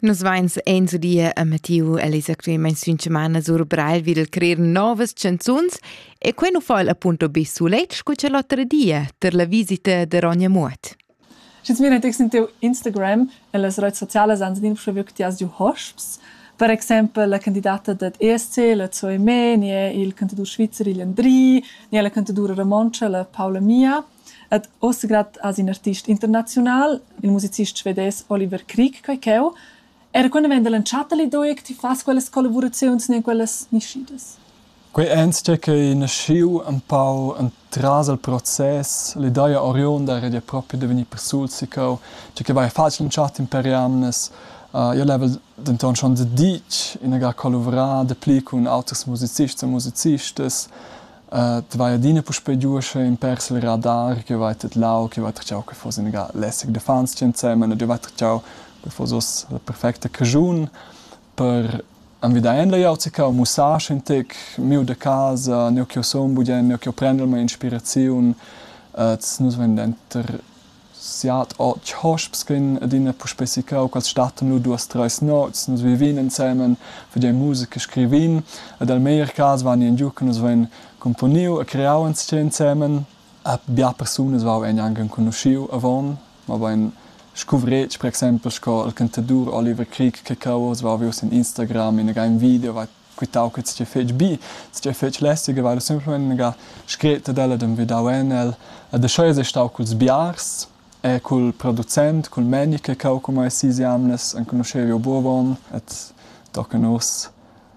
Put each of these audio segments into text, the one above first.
Nus vains enzo di a Mattiu e les actualmaing sün chamana sur Breil vil crer novas chanzuns e quai nu fa'l appunto be sulet scu cha l'otra dia ter la visita da Ronja Muot. Schi's vegna tex in teu Instagram e las rots socialas ans din scha view chi as giu hosps. Per exaimpel la candidata dad ESC, la Zoe Meh, ne il cantadur svizzer Ilan Dri, ne la cantadoura romontscha la Paula Mia. Ed oz grad as ün artist internaziunal, il musicist svedес Oliver Krieg, quai ch'eu. Era quando vegn da l'entschatta l'idea che ti fas quellas collavuraziuns ne quellas nischidas? Quei enzatgei ch'ei naschiu empau entras il process, l'ideia oriunda era da propi da vegnir persuls sicau, tgei che vai facil entschatta per jamnas. Uh, io level denton schon da ditg inaga collavurar dapli cun auters musicists e musicistas. Ed vai adina puspei giu uschè in pèr sil radar che vai tedlau, che vai tratgau che fuss ina ga lässig da fans tgi ensemen ed jeu vai tratgau dat fuss uss la perfecta caschun per envidar en la jauzica mussar in tec miu da casa, neu ch'jeu sun bugen, neu ch'jeu prendel mei inspiraziun. Ed nus vein denter siat, otg hosps ch'ein adina puspei secau quels stattan lu duas treis nots, nus vivin ensemen, fagein musica, scrivin ed el meglier cas vegnin giu che nus vein cumponiu e creau enzatgei ensemen. E bia persunas vevan gnanc enconuschiu avon, mabain scuvretg per exempel sco il cantadur Oliver Krieg che cau oz va vi uss en Instagram in agen video, va quitau che tgei fetg bi, tgei fetg lässig, e vara semplamein ga scret ad ella ed envidau en el. Ed aschia es ei stau culs biars e cul producent, cul meni che cau cumai sis jamnas, enconuschevi Bovon et tochen uss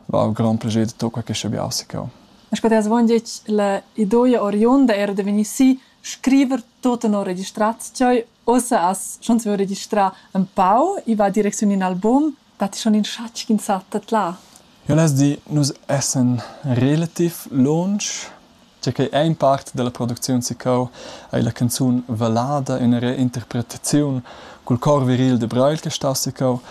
va ho grand plascher de tocar questa biasica. Esch potess vongetg la idoia oriunda era de vegnir si scriver tot tenor registrat, tgei ossa as schon savevo registrar un pau, i va direcziun in album, dat ti schon insatgi insatge là? Jo less dir, nus essan relativ lunsch, tge che è in part dalla producziun sicau ei la canzun Valada, ina reinterpretaziun cul cor viril de Breil che sta sicau,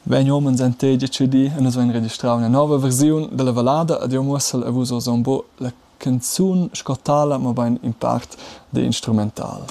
vegn homens entei decidì e nus vein registrau ina nova versiun dalla Valada ed jeu muossel a vus oz embo la canzun sco tala, mobein in part de instrumental.